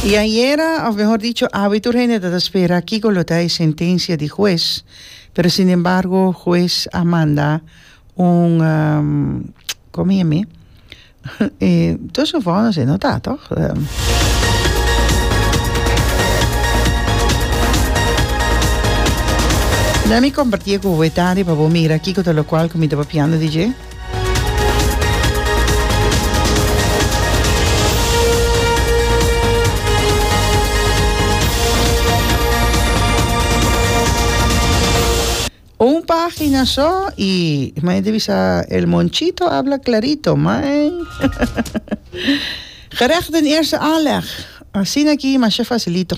Y ayera, of mehor dicho, awe tur hende ta ta spera kico lo ta e sentencia di hues, pero sin embargo hues a manda un como yeh mi? dos un vonnis e no ta toch? Lemme comparti e cu awe tardi pa bo mira kico ta locual cu mi ta papiando di dje. Un página so y may debe sa el monchito habla clarito, may. Gerecht den eerste aanleg. Asina ki masha facilito.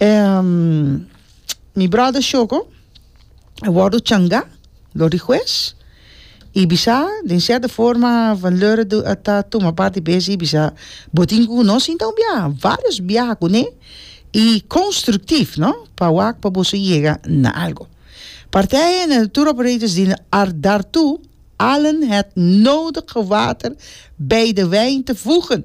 Ehm, mi brother Shoko a wordo changa lo di hues y bisa den cierta forma van Leurden a ta tuma parti bes y bisa bo tin cu no sinta un biaha, varios biaha cune y constructief no pa wak pa boso yega na algo. Partij hende na tour operators di daartoe allen het nodige water bij de wijn te voegen.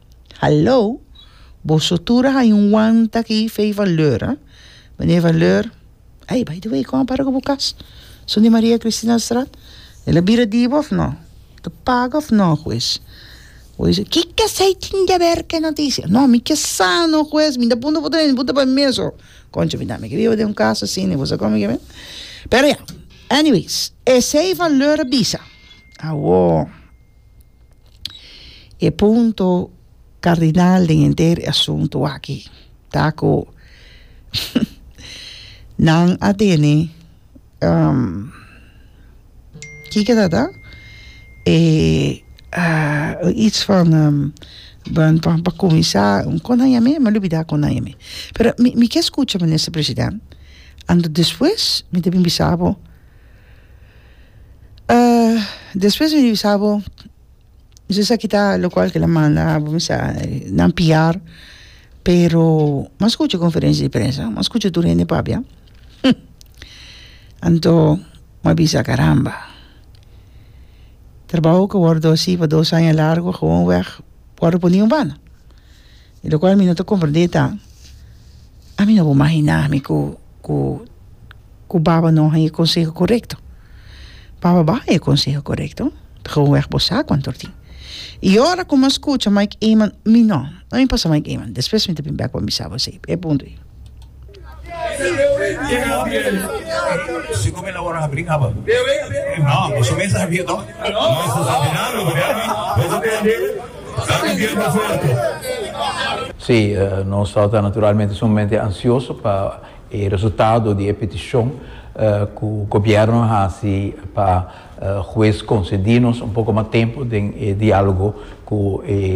Hallo, boso tur a haña un wanta aki Fey van Leur, a? Mene van Leur, Ei, by the way, kon a para ku bo kas? Son di Maria Kristinastraat? El a bira di bo òf nò? El ta paga òf nò, hues? Bo isi, Kiko esei tin di aber ku e notisia? Nò, mi ke sa no, hues. Mi ta punta bo tambe, mi punta pa mi mesun. Konchi, mi tambe ke biba den un kas asina, i bo sa kon mi ke biba. Pero ya, anyways, esei van Leur a bisa. Awor. E punto kardinal den henter e asuntu aki ta ku nan a tene kiko ta ta e its van pa kuminsá kon nan yam'é mi a lubidá kon nan yam'é pero mi ke skucha minister president ando despues mi ta bin bisa bo. despues mi bisa bo esaki sa kita locual kilaboso manda abo mi sa nan piar pero ma scucha conferencia de prensa ma scucha tur hende papia hum anto ma bisa caramba trabajo cu wordo hasi pa dos aña largo gewoon weg wordo pone un banda y locual mi no ta comprende ta ami no a imagina mi cu cu ku baba no a haya e konseho korekto. Baba bo a haya e konseho korekto, ta geweg bo sa kuantu a tin. I ora ku mi a skucha Mike Eman, mi no, no mi pasa Mike Eman, despues mi ta bin bèk pa mi sabo esei, e punto ei. Si ku mi lo wòrdu habri kaba? No, bo su mes a sabia tok. Si, nosotros ta naturalmente sumamente ansioso pa. E resultado di e peticion cu Gobierno a haci pa Hues concedi nos un poco mas tempo den e dialogo cu e.